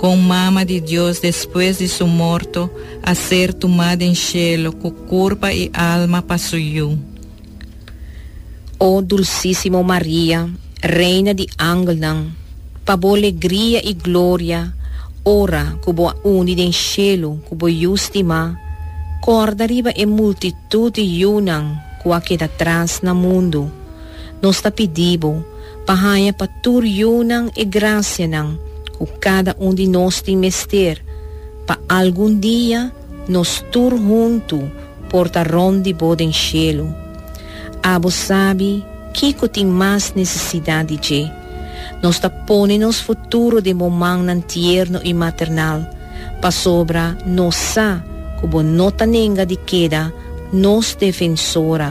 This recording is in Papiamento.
kon Mama di Dios despues di su morto a ser tumá den shelo ku kurpa i alma pa su Yu. O dulsísimo Maria, Reina di angelnan, pa bo legria i gloria ora ku bo a uni den shelu ku bo Yu stimá, kòrda riba e multitut di yunan ku a keda tras na mundu. Nos ta pidi bo pa haña pa tur yunan e grasianan ku kada un di nos tin mester, pa algun dia nos tur huntu por ta rònt di bo den shelu. Abo sabi kiko tin mas nesesidat di dje. Nos ta pone nos futuro den bo mannan tierno i maternal, pasobra nos sa ku bo no ta nenga di keda nos Defensora,